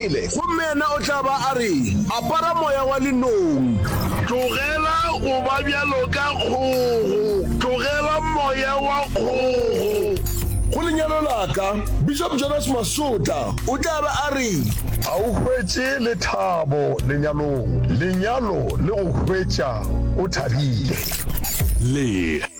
Bibele, gomme yena o tla ba a re, Apara moya wa lenong. Tlogela go ba bjalo ka kgogo. Tlogela moya wa kgogo. Go lenyalo la ka, Bishop Jonas Masota o tla be a re. A o hwetše lethabo lenyalong. Lenyalo le go hwetša o thabile. Le.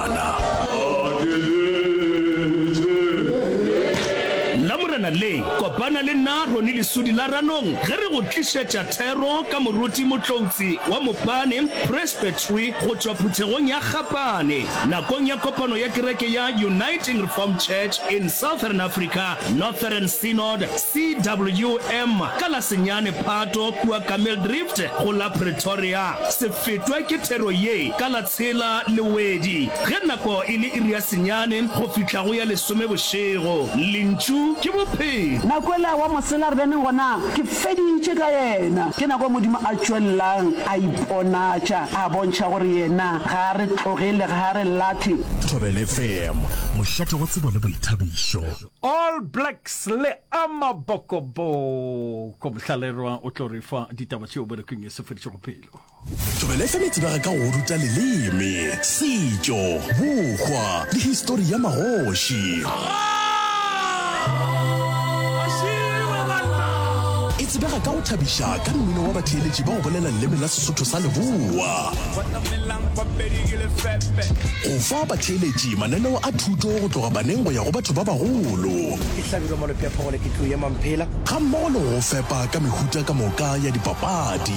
a na. Nna Morena le kopana le nna Roni lesudi la Ranong ge re go tlišetša thero ka moruti motloutsi wa Mopane Presbytery go tšwa phuthegong ya Gapane nakong ya kopano ya kereke ya Uniting Reformed Church in Southern Africa Northern Synod, CWM, ka la senyane Phato kua Kamildrift go la Pretoria. Se fetwa ke thero ye ka la Tsela le Wedi, ge nako e le iri ya senyane go fihla go ya lesome bošego. Lentšu ke Bophelo. Na kwela wa mosela re bene gona? Ke feditše ka yena. Ke nako Modimo a tšwelelang a iponatša, a bontšha gore Yena ga a re tloge le ga a re lahle. Thobela FM, mošate wa tsebo le boithabišo. All Blacks le Amabokoboko. Mohlallerwa o tlo re fa ditaba tšeo berekong ye sefedišogo pelo. Thobela FM e tsebega ka go ruta leleme, setšo, bokgwa le histori ya magoši. E tsebega ka go thabiša ka mmino wa batheeletši ba go bolela leleme la Sesotho sa Leboa, go fa batheeletši mananeo a thuto go tloga baneng go ya go batho ba bagolo, gammogo le go go fepa ka mehuta ka moka ya dipapadi.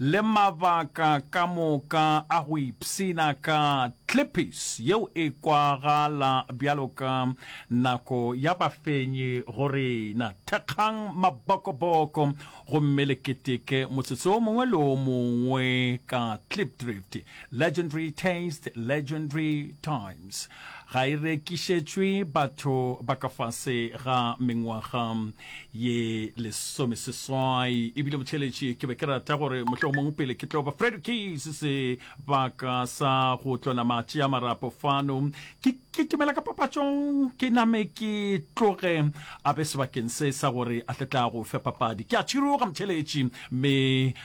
le mabaka ka moka a go ipshina ka tlipis yeo e kwagala bjalo ka nako ya bafenyi go rena. Thekgang mabokoboko gomme le keteke motsotso o mongwe le o mongwe ka Klipdrift. Legendary Taste, Legendary Times ga e rekišetšwe batho ba ka fase ga mengwaga ye lesomeseswai ebile botheletši ke be ke rata gore mohleo mongwe pele ke tlo ba fred keys sebaka sa go tlona matši a marapo fano ke kitimela ka papatšong ke name ke tloge a be sebakeng se sa gore a tle tla go fe papadi ke a tšhiroga motheletši mme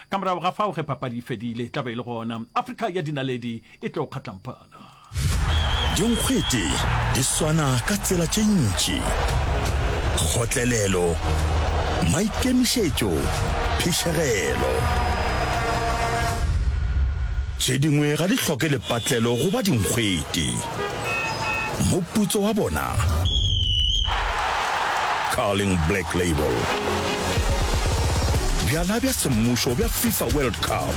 ka morago ga fao ge papadi e fedile tla be e le gona afrika ya dinaledi e tlo kgatlampana Dinkgwete di swana ka tsela tše ntši, kgotlelelo, maikemišetšo, phišegelo. Tše dingwe ga di hloke lepatlelo go ba dinkgwete. Moputso wa bona, Carling Black Label. Bjala bja semmušo bja FIFA World Cup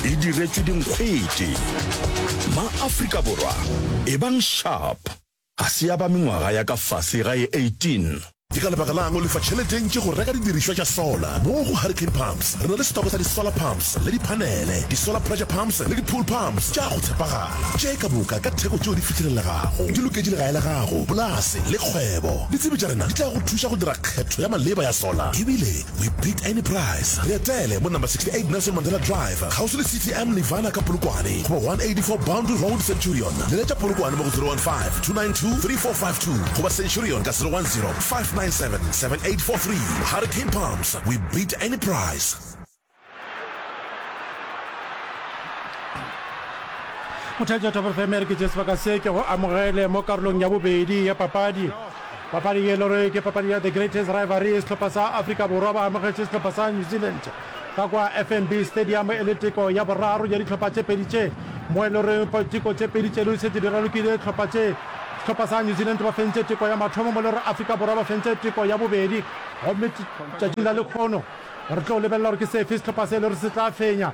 e diretšwe dinkgwete. Ma-Afrika Borwa, ebang sharp ga se ya ba mengwaga ya ka fase ga e 18. Ke ka lebaka la'ng o lefa tšhelete e ntši go reka didirišwa tša solar? Mo go Hurricane Pumps re na le setoko sa di-solar pumps le diphanele, di-solar pressure pumps le di-pool pumps tša go tshepagala tše ka moka ka theko tšeo di fihlelelegago. Di loketše legae la gago, polase le kgwebo. Ditsebi tša rena di tla go thuša go dira kgetho ya maleba ya solar ebile We beat any price. Re etele mo number 68 Nelson Mandela Drive, kgauswi le CTM Nirvana ka Polokwane, goba 184 Boundary Road, Centurion. Leletša Polokwane mo go 015-292-3452 goba Centurion ka 010-597-7843. Hurricane Pumps, we beat any price. mothaetši wa top fm ke jesu baka se ke go amogele mo karolong ya bobedi ya papadi papadi ye lore ke papadi ya the greatest rivalry e sehlopha sa afrika borwa ba amogetše sehlopha sa new zealand ka kwa fnb stadium e le teko ya boraro ya dihlopha tše pedi tše mo e lore teko tše pedi tše di setse di ralokile dihlopha tše sehlopha sa new zealand ba fentse teko ya mathomo mo lore afrika borwa ba fentse teko ya bobedi gomme tšatšing la lekgono Re tlo lebelela gore ke sefe sehlopha se e le gore se tla fenya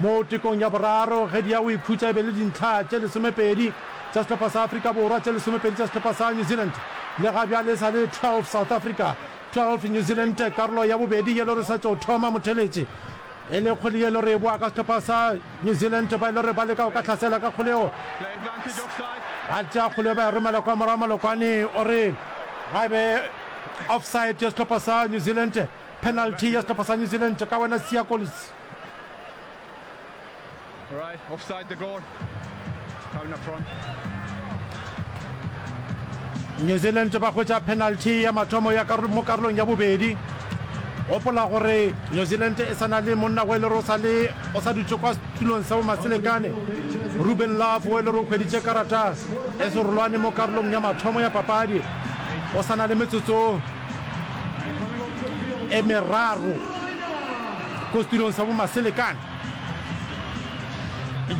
mo tekong ya boraro ge di ya go ikhutša e be e le dintlha tše lesomepedi tša sehlopha sa Afrika Borwa, tše lesomepedi tša sehlopha sa New Zealand. Le ga bjale e sa le 12 South Africa, 12 New Zealand. Karolo ya bobedi ye e le gore e sa tšo thoma motheletše e le kgole ye e le gore e boa ka sehlopha sa New Zealand ba e le gore ba leka go ka hlasela ka kgole eo ba tšea kgole ba e romela kwa morago. Malokwane o re ga e be offside ya sehlopha sa New Zealand. Penalty ya sehlopha sa New Zealand tša ka wena Siya Kolisi. Alright, offside the goal. Corner front. New Zealand ba hwetša penalty ya mathomo ya karolo mo karolong ya bobedi. Gopola gore New Zealand e sa na le monna o e lero sa le o sa dutše kwa setulong sa bomaselekane Ruben Love o e lero o hweditše karata e serolwane mo karolong ya mathomo ya papadi o sa na le metsotso e meraro ko setirong sa bomaselekane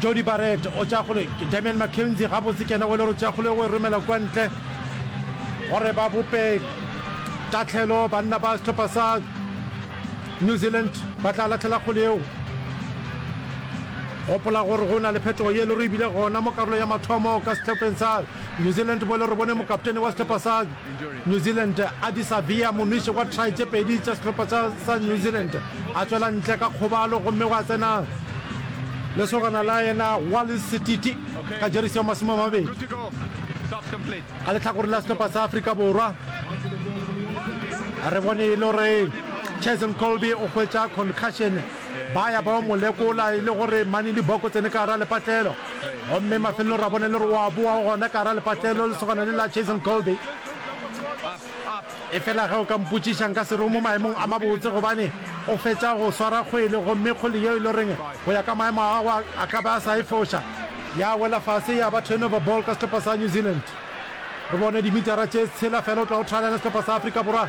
jody barret o tšagole damian mckenzie gabotse kena o le gore tšagole o e romela kwa ntle gore ba bope tatlhelo banna ba setlhopha sa new zealand ba tla latlhela kgole eo gopola gore go na le phetogo ye le re ebile gona mo karolo ya mathomo ka setlhopheng sa new zealand bo le re bone mokaptene wa setlhopha sa New Zealand a disa Via Momishi kwa try tše pedi tša sehlopha sa sa New Zealand a tšwela ntle ka kgobalo gomme gwa tsena lesogana la yena Wallis Sititi ka jeresi ya masome a mabedi ka lehlakoreng la sehlopha sa Afrika Borwa. Re bone e le gore Cheslin Kolbe o hwetša concussion Ba ya ba yo mo lekola e le gore mane liboko tsene ka gara lepatlelo. Gomme mafelelong ra bona e le gore o a boa gona ka gara lepatlelo, lesogana le la Jason Colby. Efela ge o ka mpotšiša, nka se re o mo maemong a mabotse gobane o fetša go swara kgwele gomme kgole yeo e le goreng go ya ka maemo a gagwe a ka be a sa e foša, ya wela fase ya ba turnover ball ka sehlopa sa New Zealand. Re bone dimitara tše tshela fela o tla o thalana sehlopa sa Afrika Borwa.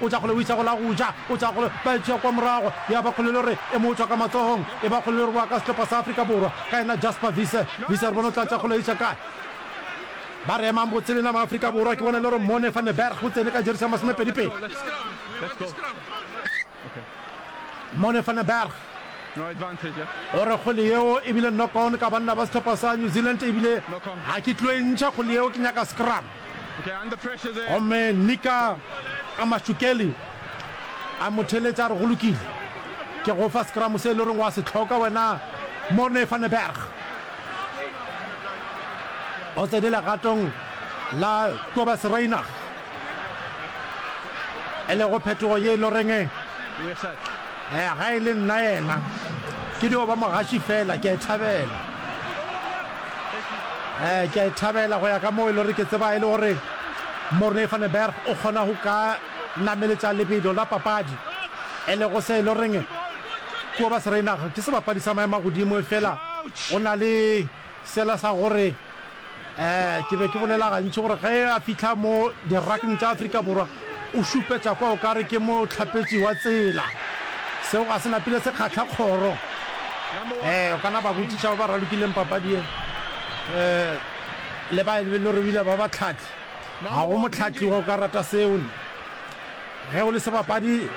O tla kgole o isa go la go ja. O tla kgole ba e tšea kwa morago. Ya ba kgole le gore e mo tšwa ka matsohong. E ba kgole le gore wa ka sehlopa sa Afrika Borwa, ka yena Jasper Wiese. Wiese re bone o tla tša kgole isa kae. Ba re emang botse lena ma Afrika Borwa. Ke bona le gore Mone van den Berg o tsene ka jeresi ya masomepedi pedi. Mone van den Berg o re kgole yeo e bile knock on ka banna ba sehlopa sa New Zealand ebile ga ke tlo e ntšha kgole yeo, ke nyaka scrum. Gomme Nika a Mashukeli a mo theletša a re, Go lokile. Ke go fa sekramo se e le goreng wa se hloka wena, Morne van den Berg. O tsene legatong la Kobus Reinach, e lego phetogo ye e le goreng Eya, ga e le nna yena, ke dio ba mogaši fela. Ke a e thabela. Ee, ke a e thabela, go ya ka moo e le gore ke tseba e le gore Morne van den Berg o kgona go ka nameletša lebelo la papadi, e lego se e le goreng Kobus Reinagh ke sebapadi sa maemo a godimo efela o na le. Sela sa gore ke be ke bolela gantši gore ge a fihla mo dirakng tša Afrika Borwa o šupetša kwa o ka re ke mohlapetši wa tsela. Seo ga se napile se kgahla kgoro. Ee, o ka na ba botšiša ba ba ralokileng papadi ye le ba e le gore ebile ba bahlahli. Ga go mohlahli wa o ka rata seo. Ge o le sebapadi,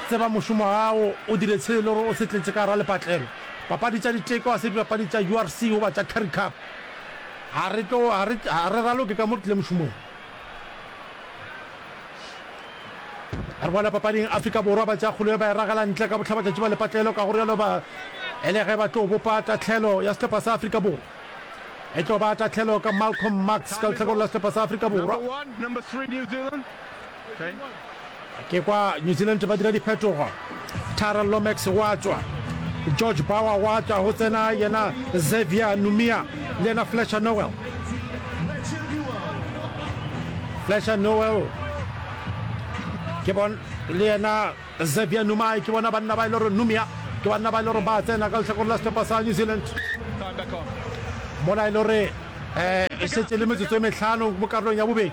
tseba mošomo wa gago, o dire se e le gore o se tletše ka gare ga lepatlelo. papadi tša diteko, ga se dipapadi tša URC goba tša Currie Cup. Ga re tlo, ga re, ga re raloke ka mo re tlile mošomong. Re boela papading, Afrika Borwa ba tšea kgolo ye ba e ragela ntle ka bohlabatšatši ba lepatlelo, ka go rialo ba e le ge ba tlo bopa tahlelo ya sehlopha sa Afrika Borwa. E tlo ba tahlelo ka Malcolm Marx ka lehlakoreng la sehlopha sa Afrika Borwa. Ke kwa New Zealand ba dira diphetogo. Tara Lomax wa tšwa, George Bauer wa tšwa, go tsena yena Xavier Numia le yena Fletcher Noel. Fletcher Noel ke bon le yena Xavier Numai ke bona banna ba e le gore Numia ke banna ba e le gore ba tsena ka letlhakore la setlhopha sa New Zealand mola e le gore um e šetse le metsotso e metlhano mo karolong ya bobedi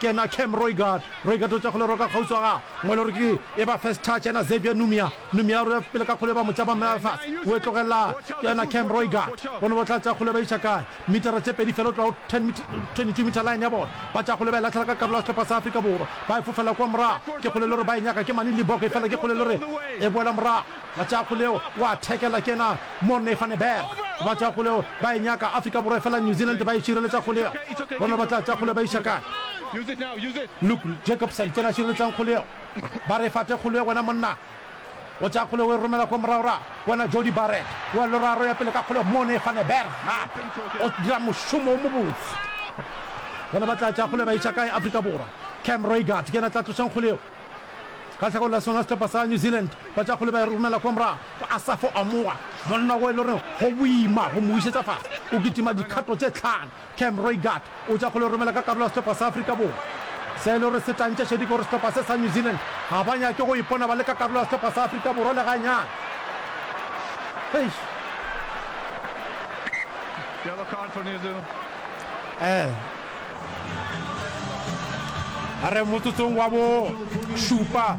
Ke yena Cam Roigard. Roigard o tšwa go leroka kgauswi wa gagwe. Mongwe e le gore ke e ba first touch yena Xavier Numia. Numia o re pele ka kgole e ba motšaba mme a fase. O e tlogelela go yena Cam Roigard. Bona ba tla tšea kgole ba iša kae. Mitara tše pedi fela go tloga go 10 meter, 22 meter line ya bona. Ba tšea kgole ba e latlhela ka karolo ya sehlopha sa Afrika Borwa. Ba e fofela kwa morago. Ke kgole e le gore ba e nyaka ke mane Libbok efela ke kgole e le gore e boela morago. Batšakgoleo o a thekela kena Morne van den Berg. Batšakgoleo ba e nyaka Afrika Borwa efela New Zealand ba e šireletša kgoleo. Bona ba tla tša kgoleo ba iša kae? Luke Jacobson kena a šireletšang kgoleo. Ba re fate kgoleo wena monna. O tša kgoleo o e romela kwa moragorago. Wena Jody Barrett o a loraro ya pele ka kgoleo. Morne van den Berg gape o dira mošomo o mobotse. Bona ba tla tša kgoleo ba iša kae? Afrika Borwa. Cam Roigard kena tla tlošang kgoleo. Ka tlhagong la sona sehlopha sa New Zealand, batšakgole ba e romela kwa morago go Asafo Amoa, monna wo e le goreng go boima go mo bušetša fase. O kitima dikgato tše tlhano. Cam Roigard o tša kgole o romela ka karolo ya sehlopha sa Afrika Borwa. Se e le gore se tla ntša šedi ke gore sehlopha se sa New Zealand ga ba nyake go ipona ba le ka karolo ya sehlopha sa Afrika Borwa le ganyane. Eish. Yellow card for New Zealand. Eh. A re motsotsong wa bo šupa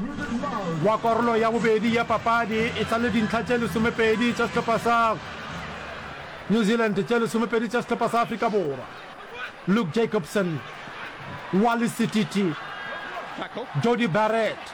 wa karolo ya bobedi ya papadi e sa le dintlha tše lesomepedi tša sehlopha sa New Zealand tše lesomepedi tša sehlopha sa Afrika Borwa. Luke Jacobson, Wally Sititi, Jody Barrett,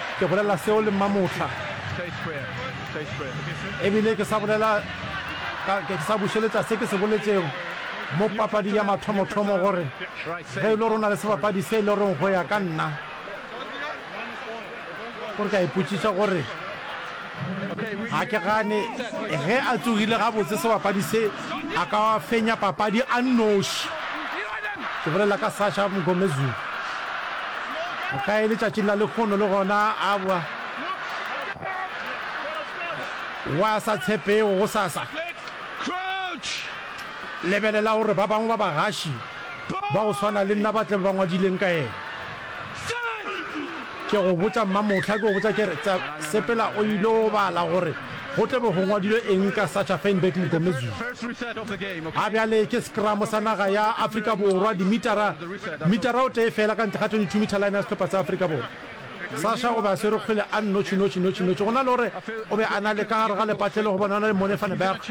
Ke bolela seo le mmamohla. Ebile ke sa bolela ka, ke sa bušeletša se ke se boletšego mo papading ya mathomothomo, gore ge e le gore o na le sebapadi se e le goreng go ya ka nna, gore ke a ipotšiša gore. Ga ke gane ge a tsogile gabotse sebapadi se a ka fenya papadi a nnoši. Ke bolela ka Sasha Mngomezulu. O ka e letšatšing la lekgono le gona a bwa wa sa tshepego go sasa. Lebelela gore ba bangwe ba bagaši ba go swana le nna ba tle ba ngwadileng ka yena. Ke go botša mmamohla, ke go botša ke re, tsa, sepela o il'o bala gore go tla be go ngwadilwe eng ka Sacha Feinberg Mngomezulu. A bjale ke sekramo sa naga ya Afrika Borwa, dimitara, mitara o tee feela ka ntle ga 22 meter line ya sehlopha sa Afrika Borwa. Sacha o be a swerwe kgwele a nnotši, notši, notši, notši, go na le gore o be a na le ka gare ga lepatle le go bona go na le Mone van Berg,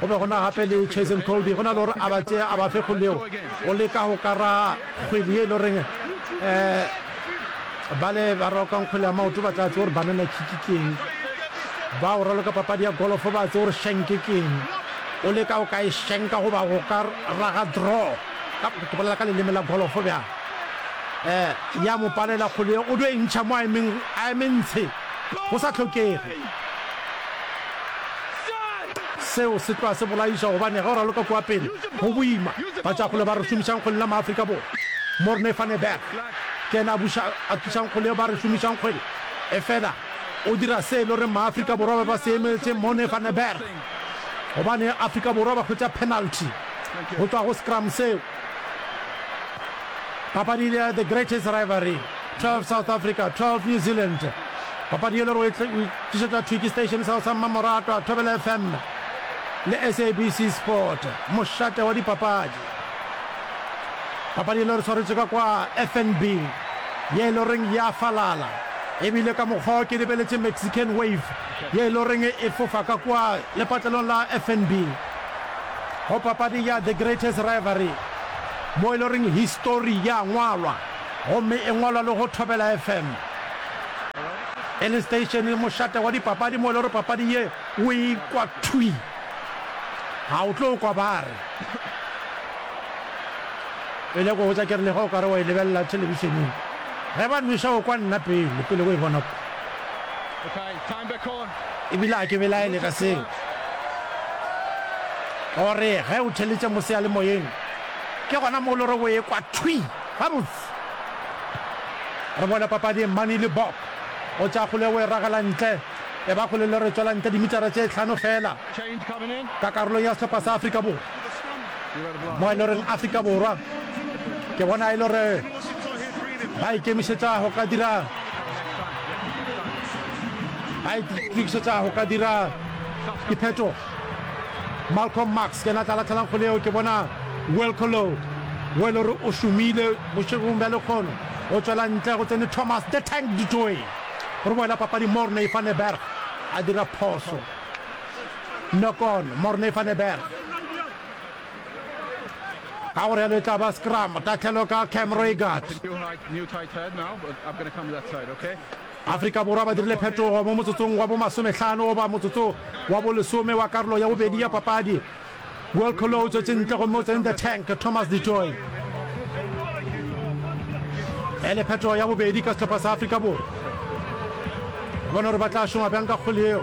go be go na gape le Chase and Cody, go na le gore a ba tšee a ba fe kgole yeo go leka go ka ra. kgwedi ye e lo reng um bale ba roka nkgwele ya maoto ba tla tse gore banana kiki keng ba o raloka papadi ya golofo ba tse gore shenke keng o le ka o ka e shenka goba go ka raga draw ka ke bolela ka leleme la golofo bjang um ya mo palela kgwele o do e ntšha mo a ementshe go sa hlokege. Seo se tloa se bolaiša gobane ge o raloka kua pele go boima. Batšakgole ba re šomišang kgwele la Maafrika Borwa, Morne van der Berg, ke yena a buša a tlišang kgwele yeo ba re šomišang kgwele. Efela o dira se e le goreng Maafrika Borwa ba be ba se emetše, Morne van der Berg, gobane Afrika Borwa ba hwetša penalty go tšwa go scrum seo. Papadi e le ya The Greatest Rivalry. 12 South Africa, 12 New Zealand. Papadi ye lero e tlišetša Twiki Station sa go sa mmamoratwa Thobela FM le SABC Sport, mošate wa dipapadi. Papadi ye lero swaretše ka kwa FNB ye loreng ya falala ebile ka mokgwa ke lebeletše Mexican Wave ye loreng e fofa ka kwa lepatlelong la FNB go papadi ya The Greatest Rivalry mo e loreng histori ya ngwalwa. gomme e ngwalwa le go Thobela FM. E le steišene mošate wa dipapadi mo e le gore papadi ye o e kwa thwi, ga o tlo kwa ba re e le go botsa ke re lega o ka re wa e lebelela thelebišeneng ge ba nweša o kwa nna pele pele go e bona kwa ebile a ke belaele ka seo gore ge o theletše mo seyalemoyeng ke gona mo o le gore o e kwa thwi. Gabotse, re boele papading. Mani Libbok o tšea kgole o e ragela ntle, e ba kgole le re tšwela ntle dimitara tše hlano feela ka karolong ya sehlopha sa Afrika Borwa. Mo e le goreng Afrika Borwa ke bona e le gore ba ikemišetša go ka dira ba itokišetša go ka dira diphetogo. Malcolm Marx ke yena a tla lahlelang kgole yeo. Ke bona Wilco Louw wo e le gore o šomile bošegong bja lekgono, o tšwela ntle. Go tsene Thomas The Tank du Toit. Re boela papading, Morne van der Berg a dira phoso. Knock on, Morne van der Berg. Ka gore yalo e tla ba scrum, tatlhelo ka Cam Reigard. Afrika Borwa ba dirile phetogo mo motsotsong wa bo masomehlano goba motsotso wa bo lesome wa karolo ya bobedi ya papadi. Welcolo o tswetše ntle gomme o tsene the tank Thomas du Toit e le phetogo ya bobedi ka sehlopha sa Afrika Borwa. Re bona gore ba tla šoma bjang ka kgole eo.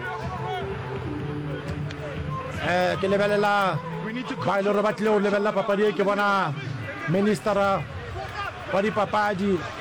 Eh, ke lebelela ba e le gore ba tlile go lebelela papadi e ke bona ministera wa dipapadi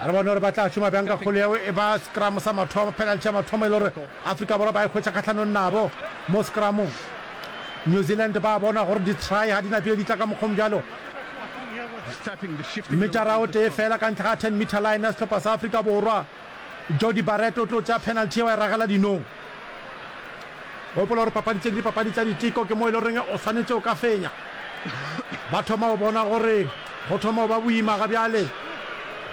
A re bone gore ba tla šoma bjang ka kgole yeo e ba sekramo sa mathomo, penalty ya mathomo e le gore Afrika Borwa ba e hwetša kgahlanong nabo mo sekramong. New Zealand ba bona gore di-try ga di na pele di tla ka mokgwong bjalo. Metara o tee feela ka ntle ga ten metre line ya sehlopha sa Afrika Borwa, Jordie Barrett o tlo tšea penalty yeo a e ragela dinong. Gopola gore papadi tše ke dipapadi tša diteko, ke mo e le goreng o swanetše o ka fenya. Ba thoma go bona gore go thoma go ba boima ga bjale,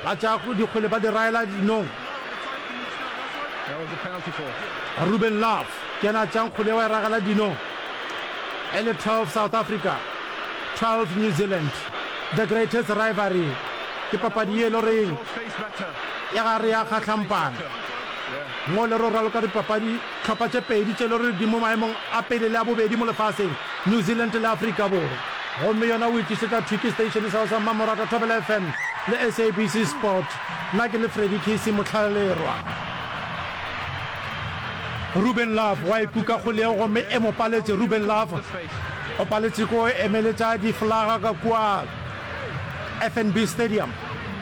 ba tša dikgwele ba di raela dinong. Ruben Love ke yena a tšang kgwele wa e ragela dinong. E le 12 South Africa, 12 New Zealand, the greatest rivalry. Ke papadi ye e le goreng ya gare ya kgahlampana mo le roralo ka dipapadi tlhopha tše pedi tše le rore di mo maemong a pele le a bobedi mo lefaseng, New Zealand le Afrika Borwa. Gomme yona o e tlisetšwa thwi ke station sa go sa Mmamoratwa Thobela FM le SABC Sport. Nna ke le Freddy Kisi Motlhalerwa. Ruben Love wa e kuka kgole yeo gomme e mo paletše. Ruben Love o paletše ke go emeletša diflaga ka kua. FNB Stadium,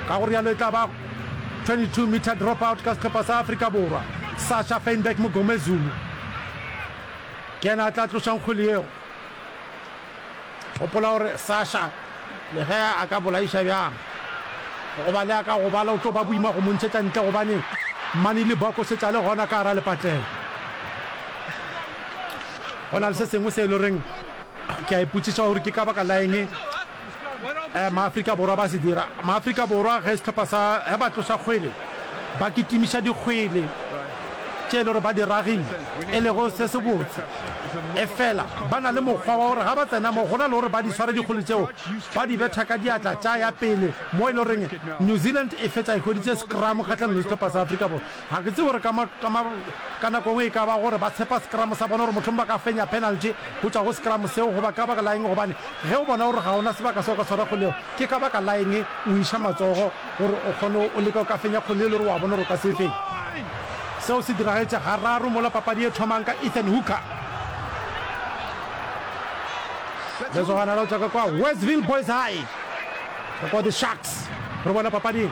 ka go realo e tla ba 22 meter drop out ka sehlopha sa Afrika Borwa, Sasha Feinberg Mugomezulu ke yena a tla tlošang kgwele yeo. Gopola gore Sasha le ge a ka bolaiša bjang goba le a ka gobala o tlo ba boima go mo ntšhetša ntle gobane Mani Libbok o šetše a le gona ka gara lepatlelo. Go na le se sengwe se e le goreng Ke a ipotšiša gore ke ka baka la eng Maafrika Borwa ba se dira. Maafrika Borwa ge sehlopha sa ge ba tloša kgwele ba kitimiša dikgwele tše e le gore ba di ragile e lego se se botse. Efela ba na le mokgwa wa gore ga ba tsena mo go na le gore ba di sware dikgwele tšeo ba di betha ka diatla tša ya pele mo e le goreng New Zealand e fetša e hweditše scrum kgahlanong le sehlopha sa Afrika Borwa. Ga ke tsebe gore ka, ka, ka nako engwe e ka ba gore ba tshepa sekramo sa bona gore mohlomong ba ka fenya penalty go tšwa go sekramo seo goba ka baka la eng gobane ge o bona gore ga o na sebaka seo ka tshwara kgole yeo ke ka baka la eng o iša matsogo gore o kgone o leke o ka fenya kgole e le gore wa bona gore o ka se e fenye. Seo se diragetše gararo mola papadi e thomang ka Ethan Hooker. Lesogana la go tšwa ka kwa Westville Boys High, go kwa The Sharks re bona papading.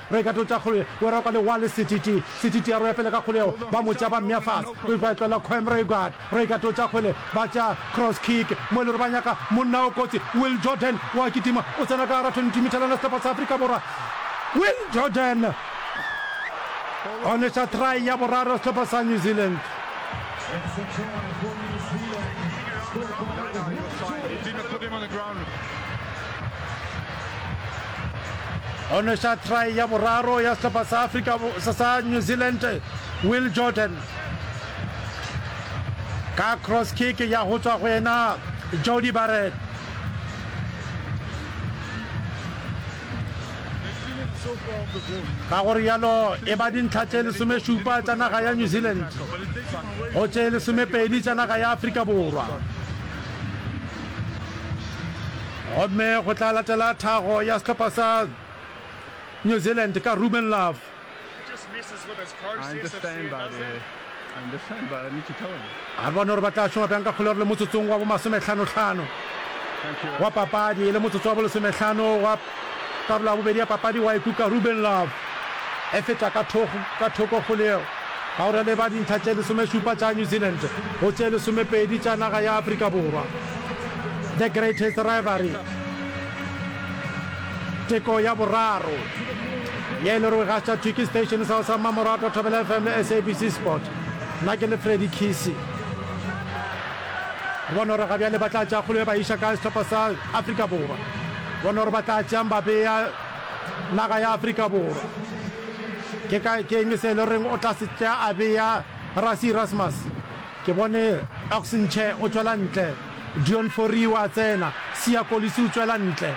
Re ka totša kgole we ra kwa le wale setiti setiti ya roya pele ka kgole yeo ba mo tša ba mmea fase we ba etlola khoem re guard re ka totša kgole ba tša cross kick mo elore ba nyaka monna o kotsi will jordan wa kitima o tsena ka gara 22 mithalana sehlopha sa afrika borwa will jordan o neša try ya boraro sehlopha sa new zealand o nweša try ya boraro ya sehlopha sa afrika sa new zealand will jordan ka cross kick ya go tswa go yena jody barret ka gore yalo e ba dintlha tše lesomešupa tša naga ya new zealand go tše lesomepedi tša naga ya afrika borwa Gomme go tla latela thago ya sehlopha sa New Zealand ka Ruben Love. A re bone gore ba tla šoma bjang ka kgolego le motsotsong wa bomasomehlanohlano wa papadi le motsotso wa bolesomehlano wa karolo ya bobedi ya papadi wa ikuka Ruben Love e feta ka thoko kgolego ka go releba dintlha tše lesomešupa tša New Zealand go tše lesomepedi tša naga ya Afrika Borwa. The Greatest Rivalry, Teko ya Boraro, ye le rwe ga tša Twiki Station sa sa Mamorato Thobela FM le SABC Sport. Nna ke le Freddy Kisi. Bona gore ga bjale ba tla tša kgolo ye ba iša ka sehlopha sa Afrika Borwa. Bona gore ba tla tšang ba beya naga ya Afrika Borwa. Ke ka ke eng se le reng o tla se tša a beya Rassie Erasmus. Ke bone Oxenche o tšwela ntle, Deon Fourie o a tsena, Siya Kolisi o tšwela ntle.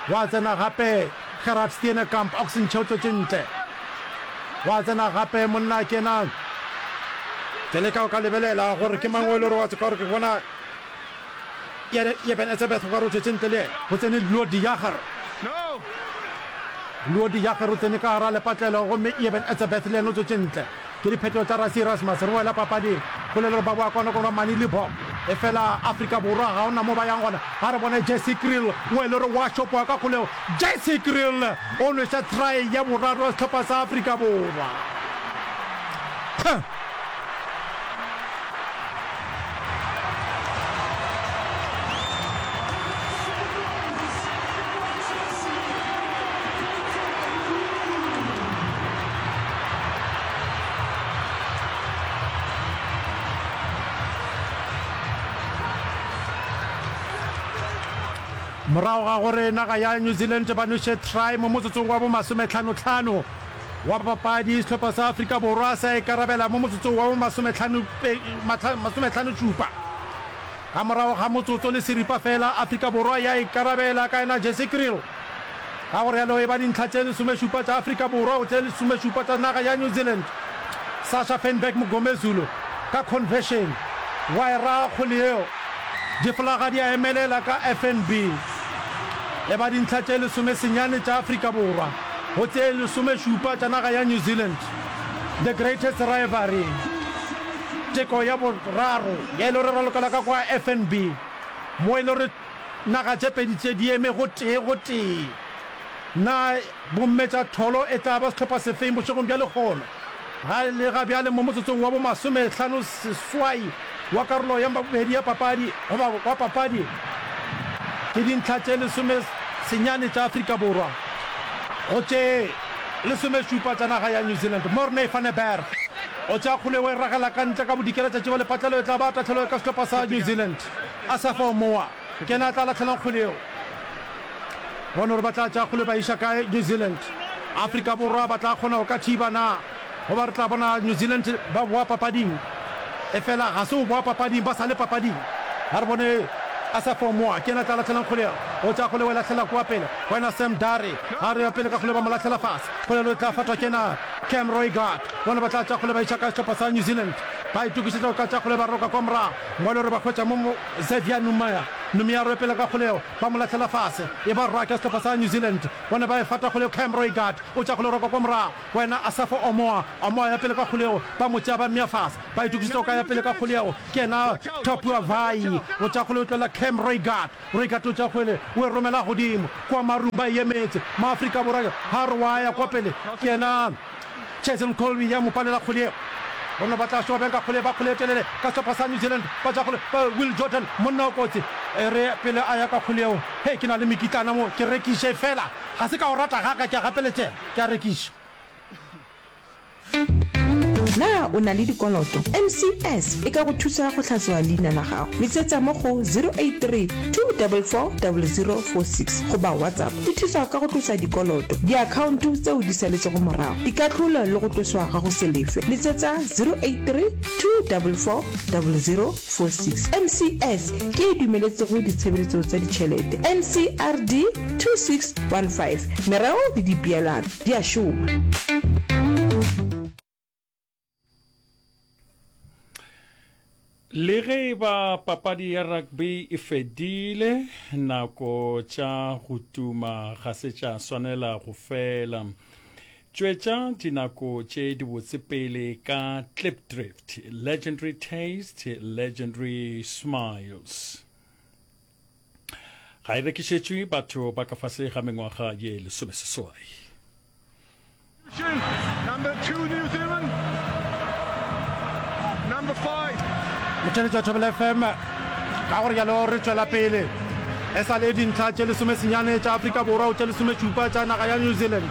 Gwa tsena gape Gerard Steenekamp, Oxenche o tlotše ntle. Gwa tsena gape monna a kenang. Ke leka go ka lebelela gore ke mang o e le gore wa tseka gore ke bona Eben Etzebeth o ka re o tšwetše ntle le yena. Go tsene Leo de Jager. Leo de Jager o tsene ka gara lepatlelo gomme Eben Etzebeth le yena o tšwetše ntle. Ke diphetho tša Rassie Erasmus re boela papading. Polelo ba boa kwano kwano mane Libbok. Efela Afrika Borwa ga ona mo ba yang gona. Ga re bone Jesse Kriel o e le gore wa šopoa ka kgolego. Jesse Kriel o nweša try ya boraro ya sehlopha sa Afrika Borwa. Huh. morago ga gore naga ya new zealand ba nwešetry mo motsotsong wa bomasometlhanotlhano wa bapapadi sehlopha sa Afrika Borwa sa ikarabela mo motsotsong wa bo masometlhanošupa. Ka morago ga motsotso le seripa fela Afrika Borwa ya ikarabela ka yena Jesse Kriel. Ka go realo e ba dintlha tše lesomešupa tša Afrika Borwa go tše lesomešupa tša naga ya New Zealand. Sasha Feinberg Mngomezulu ka conversion wa e raga kgole yeo. Diflaga di a emelela ka FNB e ba dintlha tše lesomesenyane tša Afrika Borwa. Go tše lesomešupa tša naga ya New Zealand, The Greatest Rivalry, teko ya boraro ye e le gore ra lokela ka kwa FNB, mo e le gore naga tše pedi tše di eme gotee gotee, na bomme tša tholo e tla ba sehlopha sefeng bošegong bja lekgolo? Lega bjale mo motsotsong wa bomasomehlano seswai wa karolo ya bobedi ya papadi goba wa papadi ke dintlha tše lesome senyane tša Afrika Borwa go tše lesome šupa tša naga ya New Zealand. Morne van der Berg o tšea kgole o e ragela ka ntle ka bodikela tša tšiba le patlelo e tla ba tahlelo ka sehlopa sa New Zealand. Asafa Omoa. Ke yena a tla lahlelang kgwele yeo. Bone gore ba tla tšea kgwele ba iša kae. New Zealand, Afrika Borwa ba tla kgona go ka thiba na? Goba re tla bona New Zealand ba boa papading. Efela ga se go boa papading, ba sa le papading. A re bone Asafo Moa, ke yena a tla lahlelang kgwele yeo. O tšea kgwele o e lahlela kua pele go yena Sam Dare. A re ya pele ka kgwele ba mo lahlela fase. Kgwele yeo e tla fatwa ke yena Cam Roigard. Bone ba tla tšea kgwele ba iša kae sehlopha sa New Zealand. Ba itokišetša go ka tšea kgwele ba roka kwa morago. Ngwale o re ba hwetša mo Xavier Noumair Noumier a ropela ka kgolego, ba mo lahlela fase, e ba rwa ka sehlopha sa New Zealand. O ne ba e fata kgolego, Cam Roigard o tšea kgolego roko kwa morago, go ena Asafo Omoa, Omoa ya pele ka kgolego, ba mo tšea ba mmea fase, ba itokišetša go ka ya pele ka kgolego, ke yena Tapuwa Vaa'i o tšea kgolego tloela Cam Roigard, Roigard o tšea kgole o e romela godimo kwa marung, ba e emetše, Maafrika Borwa ha a re wa ya kwa pele, ke yena. Jason Colby ya mo palela kgole yeo. Bona ba tla šoba bjang ka kgole, ba kgole e telele ka sehlopha sa New Zealand, ba tša kgole, ba Will Jordan, monna o kotsi. E re pele a ya ka kgole yeo, Hei, ke na le mekitlana mo, ke rekiše feela, ga se ka o rata ga ka, ke a gapeletšega, ke a rekiša. Na o na le dikoloto? MCS e ka go thusa go tlhatloga leina la gago. Letsetsa mo go 083. 2440046 goba whatsapp di thusa ka go tlosa dikoloto diakhaonto tseo di saletšego morago dikahlolo le go tloswa ga go se lefe letsetsa 083 2440046 mcs ke e dumeletsego ditshebeletso tsa ditšhelete ncrd 2615 merero le dipeelano di a šoma le ge e ba papadi ya rugby e fedile nako tša go tuma ga se tša swanela go fela tšwetša dinako tše dibotse pele ka clip drift legendary taste legendary smiles ga e rekišetšwe batho ba ka fase ga mengwaga ye lesomeseswai motšheletšo thobela fm ka gore jalo re tšwela pele e sa le dintlha tše lesomesenyane tša afrika borwa o tše lesometšupa tša naga ya new zealand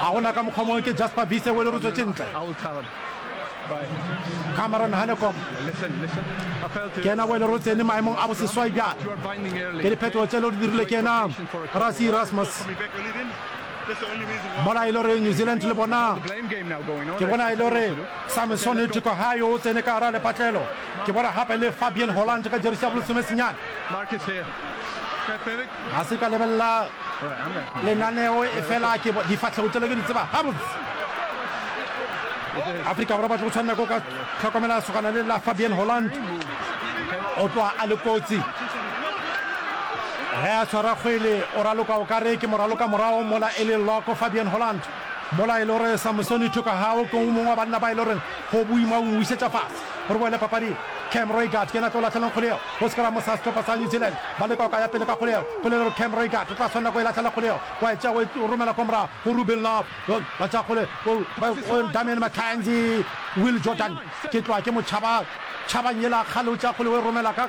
ga gona ka mokgwa mongwe ke jasper bise o lerotswe tšentle cameron hanekom ke ena o lerotsene maemong a boseswai bjale ke diphetogo tše le di dirile ke ena rasi erasmus mola e le gore new zealand le bona ke bona e le gore samson tiko ga yo o tsene ka gara lepatlelo ke bona gape le fabian holland ka jerisi ya bolosomesenyane ga se ka lebelela lenaneo e fela ke difatlhego tselo ke di tseba gabotse afrika borwa ba tlo go tshwanela ko ka tlhokomela sogana le la fabian holland o tloa a le kotsi ge a tshwara kgwele o raloka o ka re ke moraloka morago mola e le loko fabian holland mola e le gore samusoni thoka gago ke o mongwe wa banna ba e le goreng go boima o wisetša fase Re boele papading. Cam Reigard ke yena a tlo lahlelang kgoleo go scrum sa sehlopha sa New Zealand. Ba leka go ka ya pele ka kgoleo. Polelo re Cam Reigard o tla swanela go e lahlela kgoleo, wa e tšea wa e romela kwa morago go Rubin Louw. Ba tšea kgole go Damian McKenzie. Will Jordan ke tloga ke mo tšhaba, tšhabang yela kgale o tšea kgole o e romela ka.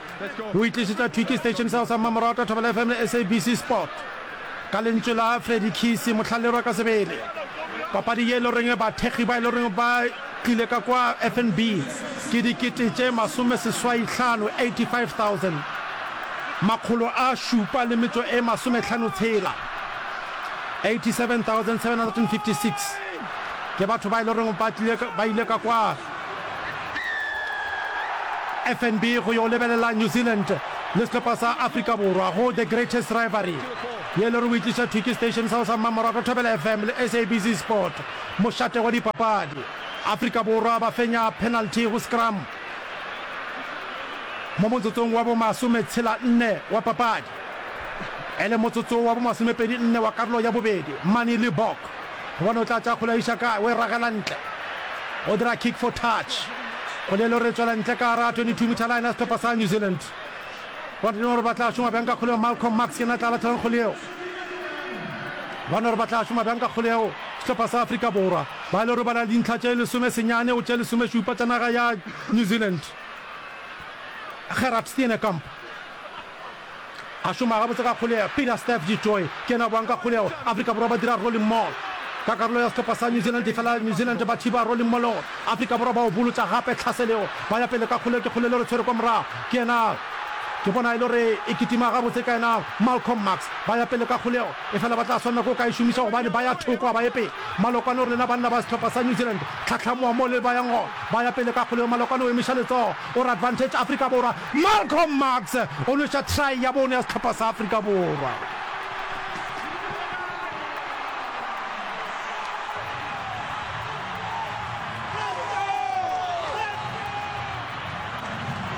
O e tlišitša thwi ke Station Cell sa Mmamoratwa Thobela FM le SABC Sport. Ka lentšu la Freddie Kisi, Mohlalerwa ka sebele. Papadi ye e le goreng bathekgi ba e le goreng ba tlile ka kwa FNB ke dikete tše masome seswai hlano, 85,000, makgolo a šupa le metšo e masome hlano tshela, 87,756, ke batho ba e le goreng ba tlile ba ile ka kwa. FNB go yo lebelela New Zealand le sehlopha sa Afrika Borwa go The Greatest Rivalry ye le re o e tliša thwi ke station sa go sa mmamoratwa Thobela FM le SABC Sport. Mošate wa dipapadi, Afrika Borwa ba fenya penalty go scrum mo motsotsong wa bomasometshela-nne wa papadi. E le motsotso wa bomasomepedi-nne wa karolo ya bobedi, Manie Libbok Gobane o tla thakgola Ishaka o e ragela ntle. O dira kick for touch. Kgole e le gore e tswela ntle ka gare ga 22 meter line ya sehlopha sa New Zealand. Gobane di no gore ba tla šoma bjang ka kgole eo. Malcolm Marx yena tla latlhelang kgole eo. Ba no gore ba tla šoma bjang ka kgole eo. Sehlopha sa Afrika Borwa ba e le gore ba na le dintlha tše lesome senyane go tše lesome šupa tša naga ya New Zealand. Gerhard Steenekamp. A šoma gabotse ka kgoleo, Peter Steph du Toit ke yena a boang ka kgoleo. Afrika Borwa ba dira rolling maul. Ka karolo ya sehlopha sa New Zealand efela New Zealand ba thiba rolling maul-o. Afrika Borwa ba obolotša gape tlhaseleo, ba ya pele ka kgoleo. Ke kgoleo e le gore tshwere kwa morago ke yena, ke bona e le gore e kitima gabotse ka yena Malcolm Marx. Ba ya pele ka kgoleo efela ba tla swanela ke go ka e šomiša gobane ba ya thoko ga ba ye pele. Malokwane o re, Lena banna ba sehlopha sa New Zealand tlhatlhamoa mo le bayang gona. Ba ya pele ka kgoleo. Malokwane o emeša letsogo o re, Advantage Afrika Borwa! Malcolm Marx o nweša try ya bone ya sehlopha sa Afrika Borwa.